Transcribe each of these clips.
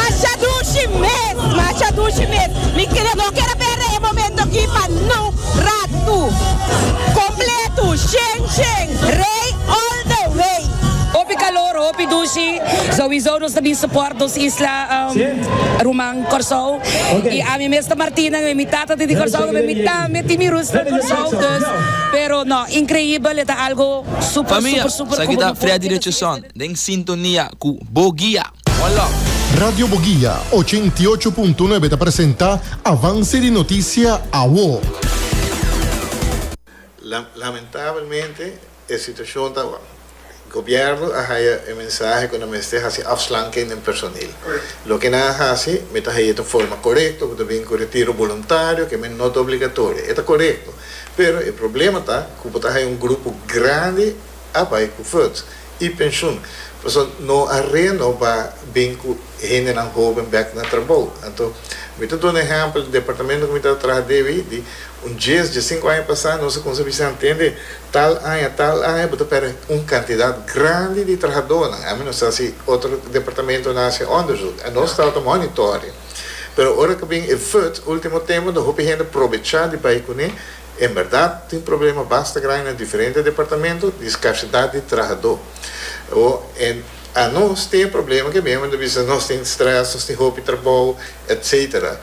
Asha dushi mes, ma asha dushi mes. Mi kere no kere bera e momento aki pa nu ratu. Completo, shen shen, rey all the way. Hopi calor, hopi dushi. Sowiso nos ta bin support nos isla ruman Corsou. Y ami mes ta Martina, ngabei mi tata ta di Corsou, ngabei mi tambe tin mi rus na Corsou. Dus, pero no, increibel, e ta algo super super super. Famia, sa aki ta Freddy Richardson. Den sintonia cu Bo Guia. One love. Radio Bo Guia ochenta i ocho punto nuebe ta presenta Avance di Noticia Awo. Lamentabelmente e situacion ta awor. Gobierno a haya e mensahe cu nan mester haci afslanking den personeel. Loke nan a haci mi ta haya ta un forma corecto cu ta bin cu retiro voluntario cu men no ta obligatorio. E ta corecto. Pero e problema ta cu bo ta haya un grupo grandi. a bai ku verd i penshun. Pasobra no a renoba bin ku hendenan hoben bèk na trabou. Anto mi ta duna ehèmpel di departamento ku mi tabata traha deb ei, di un dies, diesinku aña pasá nos a kuminsá a bisa hantende, tal aña, tal aña bo ta pèrdè un kantidat grandi di trahadónan. A ménos ta hasi otro departamentonan a hasi òndersuk, nos tabata monitore. Pero ora ku a bin e verd, último tempu, hopi hende probechá di bai kuné. En berdad tin problema basta grandi na diferente departamento di skarsidat di trahadó. O en anos tin e problema ke mihua ta bisa nos tin strès, nos tin hopi trabou, etc.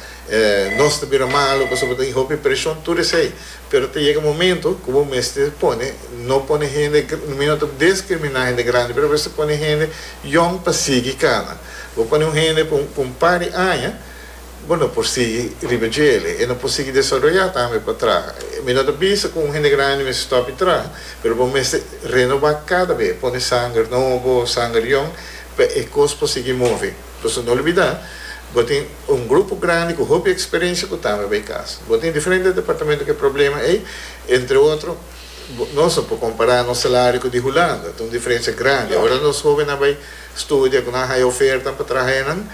Nos ta bira malu pasobra bo ta tin hopi preshon, tur esei. Pero ta yega momento ku bo mester pone, no pone hende, mi no ta deskriminá hende grandi, pero bo mester pone hende yòn pa sigui kana. Bo pone un hende pa un par di aña. Bo no por sigui riba djele. E no por sigui desaroyá tambe pa traha. Mi no ta bisa ku un hende grandi mester stòp i traha, pero bo mester renobá kada be, pone sanger nobo, sanger yon, pa e kos por sigui move. Pasobra no olbidá, bo tin un grupo grandi ku hopi eksperensia ku tambe bai kas. Bo tin diferente departamento ku e problema ei. Entre otro, nos no por kompará nos salario ku di Hulanda. Ta un diferensia grandi. Ora nos hóbennan bai studia, ku nan haya ofertanan pa traha, e nan.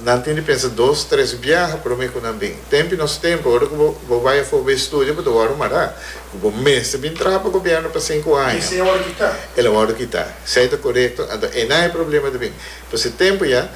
Nan tin di pensa dos, tres biaha promé ku nan bin. Tempu i nos tempu, ora ku bo bo bai afó bai studia, bo ta wòrdu mará ku bo mester bin traha pa gobièrnu pa sinku aña. Esei a wòrdu kitá. El a wòrdu kitá. Esei ta korekto. Anto einan e problema ta bin. Pa se tempu ya,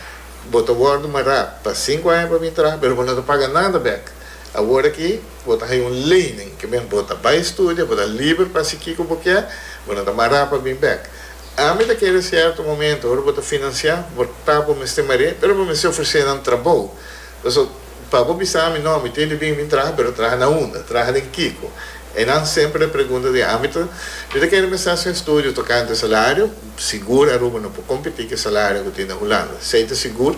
bo ta wòrdu mará pa sinku aña pa bin traha, pero bo no ta paga nada bèk. Aworakí, bo ta haya un leining, ke men, bo ta bai studia, bo ta liber pa hasi kiko bo kier, bo no ta mará pa bin bèk. Ami ta kere sierto momento ora bo ta financia bo ta bo mester mar'é pero bo mester ofrece nan trabou paso pa bo bisa ami no ami tin di bin bin traha pero traha na unda traha den kiko e nan semper ta pregunta di ami ta mi ta kere mester haci un estudio tocante salario sigur Aruba no por competi cu e salario cu tin na Hulanda si ey ta sigur